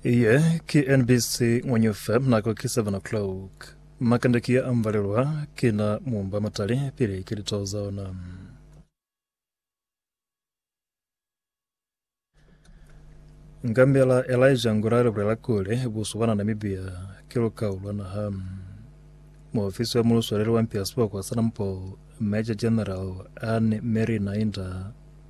Iye ki NBC Ngwenyu FM nako ki 7 o'clock. Makande ki ya ambalelwa ki na mumba matali pili ki litao za ona. Ngambela Elijah Ngura le bulela kuli buso bana Namibia ki lukao lwa naha. Muofisi wa mulusoleli wa mpia sibokwa sa Nampo, Major General Anne Mary Nainda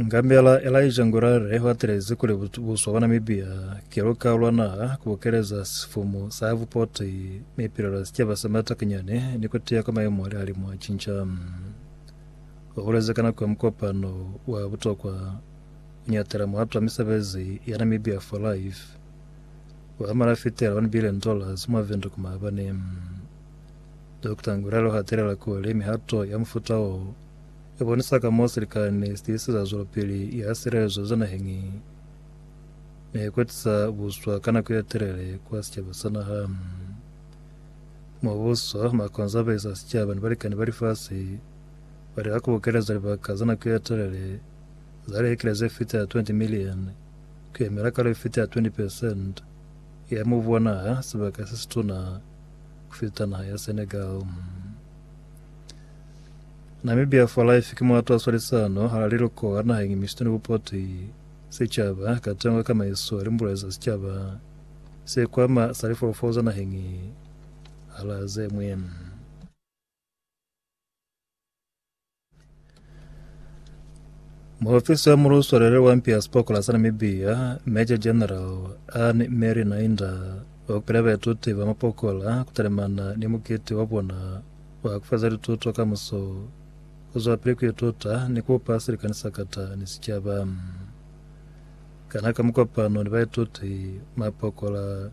Ngambela Elijah Ngurare watelezi kuli buswa bwa Namibia ke luka lwa naha ku bokeleza sifumu sa vupoti mi pilela sicaba sa matakinyani ni ku tiya kwa maemo ali alimu a cinca. O bulezi ka nako ya mukopano wa butokwa ku nyatela muhatu wa misebezi ya Namibia for Life wa malafitela 1 billion dollars mwa Vundu ku maabane. Dokota Nguralo hatelela kuli mihato ya mufuta wo i bonisa ka mo silikani si tiiseza zwelopili ya silelezo za naheñi ne kwetisa buswa ka nako ya telele kwa sicaba sa naha. Mubuso, makonzabesi a sicaba ni balikani ba lifasi ba lika ku bokeleza libaka za nako ya telele za lihekele ze fita 20 million ku yemela kalo ye fita 20 percent ya mubu wa naha, sibaka se situna ku fita naha ya Senegal. Namibia for Life ki muatu a swalisano ha liluko la naheng misito ni bupoti sicaba ka tengo ya kamaiso li mbulezi za sicaba sikwama sa lifolofolo za naheng hala zemwe. Muofisi wa muluswelele wa mpi ya sipokola sa Namibia, Major General Ann Mary Nainda, waupile baituti ba mapokola kutalemana ni mukiti wa bona wa kufeza lituto ka muso, kuzwapili kuituta ni kupa silikani sakata ni sicaba. Kana ka mukopano ni baituti, mapokola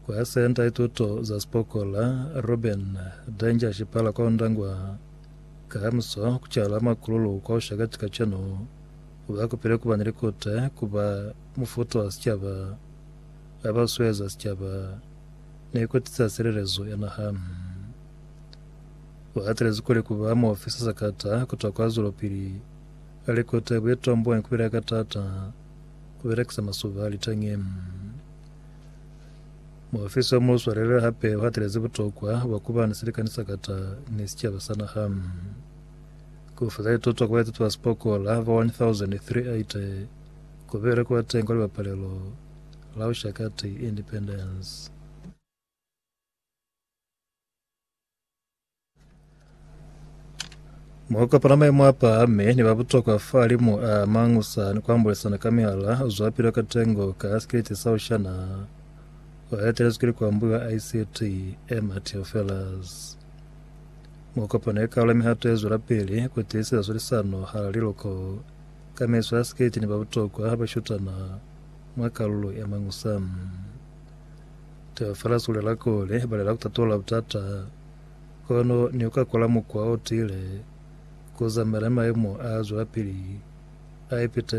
Ku ya Senta ya Tuto za Sipokola, Ruben Danger Shipala kwa Ondangwa, Kamiso ku cala makululu kwa ushakati kacenu, ba kupile kuba ni likute, kuba mufutu wa sicaba, ba ba sueza sicaba, ni ku tiisa silelezo ya naha. Ba atelezi kuli kuba muofisa sakata kutwa kwa zwelopili ya likute buitomboni ku bile ka taata, ku belekisa masuba a liteñi. Muofisi wa Muswaleli hape u hatelezi butokwa bwa kuba ni silikani sa kata ni sicaba sa naha. Ku feza lituto ku baituti ba sipokola ba 1,380 ku bile ku ba teñi kwa libapalelo la Ushakati Independence. Mwa kopana maimo a pahame ni ba butokwa fa limu a mangusa ni ku ambulisana ka mihala zwa pilo ka tengo ka sikiliti sa ushana wa etelezwi ki likwambuyo a ICT Emma Theofelus. Mwa kopano ye kaula mihato ye zwela pili ku tiiseza zwilisano hala liloko ka mezwi a sikiliti ni ba butokwa ba shutana mwa kalulo ya mangusa. Taba fela zulela kuli balela kutatola butata kono ni uka kola mukwa o tile kuzamela maemo a zwelapili a ipitezi.